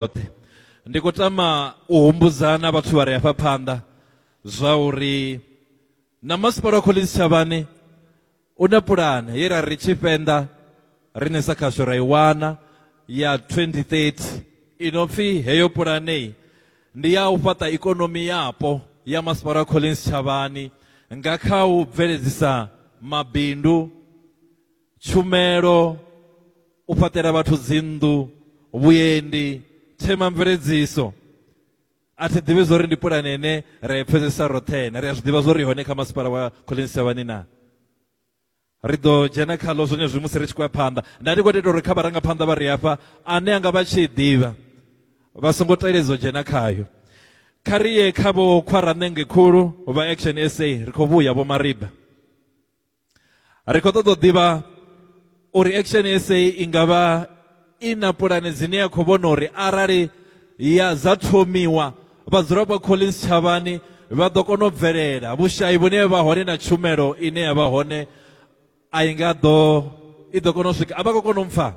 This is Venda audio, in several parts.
yoṱhe ndi khou tama u humbudza na vhathu vha re hafha phanḓa zwa uri na masipala wa khoḽedzhi tshavhane u na pulane ye ra ri tshifhenḓa rine sa khasho ra i wana ya 2030 ino pfi heyo pulanei ndi ya u fhaṱa ikonomi yapo ya masipala wa khoḽedzhi tshavhani nga kha u bveledzisa mabindu tshumelo, u fhaṱela vhathu dzinnḓu, vhuendi, themamveledziso. A thi ḓivhi zwo ri ndi pulane ine ra i pfhesesa roṱhe na ri a zwi ḓivha zwo ri hone kha masipala wa Collins Shavhani na ri ḓo dzhena khaḽo zwone zwi musi ri tshi khou ya phanḓa nda ndi khou teta uri kha vharangaphanḓa vha ri hafha ane anga vha tshi ḓivha vha songo teledza u dzhena khayo kha ri ye kha vho khwaranenge khulu vha action sa ri khou vhuya vho mariba ri khou ṱoḓa u ḓivha uri action sa i nga vha i na pulane dzine ya khou vhona uri arali ya dza thomiwa vhadzulapo collins tshavhani vha ḓo kona u bvelela vhushayi vhune vha hone na tshumelo ine ya vha hone a i nga ḓo i ḓo kona u swika a vha khou kona u mpfha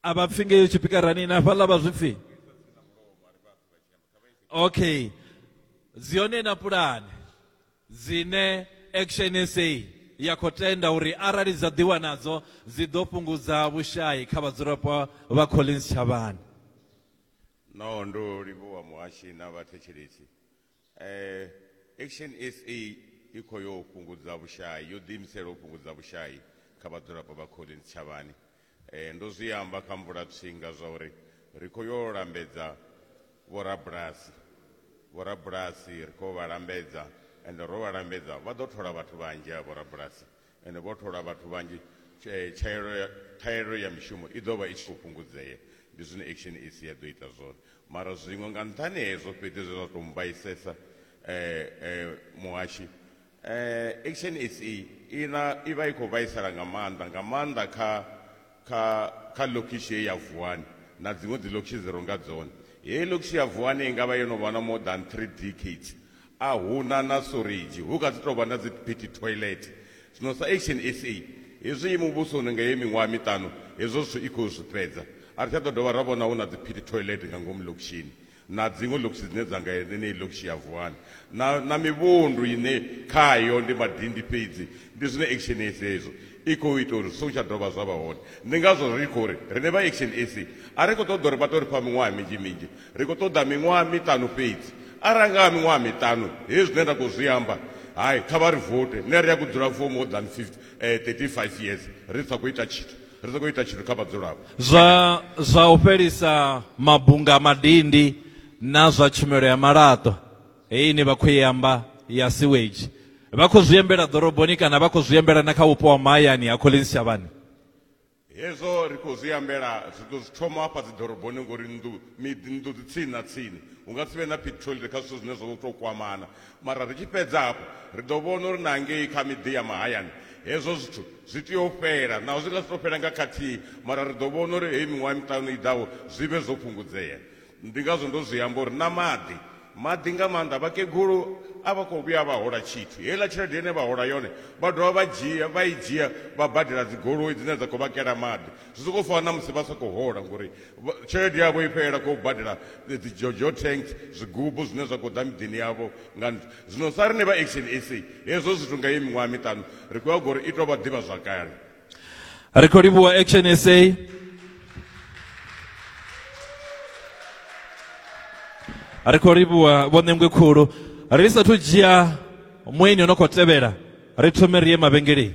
a vha pfi ngeyo tshipikarani na fhaḽa vha zwi pfi okay dzi hone na pulane dzine action sa ya khou tenda uri arali dza ḓiwa nadzo dzi ḓo fhungudza vhushayi kha vhadzulapo vha collins tshavhani no ndo livhuwa muhashi na vhathetshelesi Eh, Action SA i khou yo fhungudza vhushai, yo ḓiimisela u fhungudza vhushai kha vhadzulapo vha Colleen tshitshavhani. Eh, ndo zwi amba kha mvulatswinga zwa uri ri khou yo lambedza vhorabulasi. Vhorabulasi ri khou vha lambedza, ende ro vha lambedza vha ḓo thola vhathu vhanzhi ha vhorabulasi Ende vho thola vhathu vhanzhi, tsha, tshaelo ya, ṱhahelelo ya mishumo i ḓo vha i tshi khou fhungudzea. Ndi zwine Action SA ya ḓo ita zwone. Mara zwiṅwe nga nṱhani ha hezwo fhedzi zwe zwa tou mmbaisesa eh, eh, muhashi, eh, Action SA i, na, i vha i khou vhaisala nga maanḓa, nga maanḓa kha kha kha ḽokhishi heyi ya Vuwani na dziṅwe dziḽokhishi dzi ronga dzone. Heyi ḽokhishi ya Vuwani i nga vha yo no vha na more than three decades a hu na na suridzhi, hu kha ḓi tou vha na dzi pity toilet. Zwino sa Action SA, hezwi i muvhusoni nga heyi miṅwaha miṱanu, hezwo zwithu i khou zwi fhedza. A ri tsha ḓo dovha ra vhona hu na dzi pity toilet nga ngomu ḽokhishini. na dziṅwe ḽokishi dzine dza nga yeneyi ḽokishi ya Vuwani na, na mivhundu ine khayo ndi madindi fhedzi. Ndi zwine Action SA izwo i khou ita uri zwi songo tsha dovha zwa vha hone. Ndi ngazwo ri khou ri riṋe vha Action SA a ri khou ṱoḓa uri vha tou ri fha miṅwaha minzhi minzhi, ri khou ṱoḓa miṅwaha miṱanu fhedzi. Arali ha nga vha miṅwaha miṱanu, hezwi zwine nda khou zwi amba, hai, kha vha ri vote, nṋe ri a gu dzula for more than 50, eh, 35 years ri sa khou ita tshithu. ri ḓo khou ita tshithu kha vhadzulapo zwa zwa u fhelisa mabunga madindi na zwa tshumelo ya malaṱwa heyi ine vha khou i amba ya sewage vha khou zwi embela ḓoroboni kana vha khou zwi embela na kha vhupo ha mahayani ha Collins Shavhani hezwo ri khou zwi ambela zwi ḓo zwi thoma hafha dzi ḓoroboni ngori nnḓu miḓi nnḓu dzi tsini na tsini hu nga si vhe na petrol kha zwithu zwine zwa tou kwamana Mara ri tshi fhedza hafhu, ri ḓo vhona uri na ngei kha miḓi ya mahayani hezwo zwithu zwi tea u fhela. Naho zwi nga si tou fhela nga khathihi, mara ri ḓo vhona uri heyi miṅwaha miṱanu i ḓaho zwi vhe zwo fhungudzea. Ndi ngazwo ndo zwi amba uri na maḓi, maḓi nga maanḓa. Vhakegulu a vha khou vhuya vha hola tshithu. Heiḽa tshelede ine vha hola yone vha dovha vha dzhia, vha i dzhia vha badela dzigoloi dzine dza khou vha kela maḓi. Zwi sokou fana na musi vha sa khou hola ngori tshelede yavho i fhelela kho badela dzi jojo tanks zwigubu zwine zwa khou ḓa miḓini yavho nga nṱha zwino sa rine vha action sa hezwo zwithu nga ye miṅwaha miṱanu ri khou ya gori i tou vha ḓivha zwakale ri khou livhuwa action sa ri khou livhuwa vho ṋengwe khulu ri sathu dzhia mueni o no khou tevhela ri thome ri ye mavhengeleni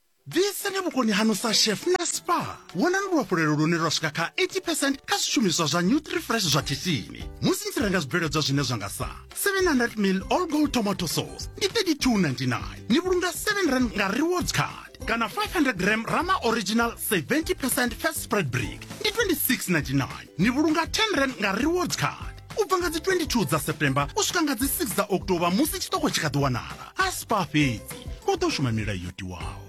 Ḓiseni vhukoni hanu sa chef na spa. Wonani luhafhulelo lune lwa swika kha 80 percent kha zwishumiswa zwa Nutrifresh zwa khishini musi ni tshi renga zwibveledzwa zwine zwa nga sa 700 mil all gold tomato sauce ndi 32.99 ni vhulunga 7 rand nga rewards card kana 500 gram rama original 70 percent fat spread brick ndi 26.99 ni vhulunga 10 rand nga rewards card u bva nga dzi 22 dza september u swika nga dzi 6 dza october musi tshiṱoko tshi kha ḓi wanala a spa fhedzi u ḓo shuma milayo yo tiwaho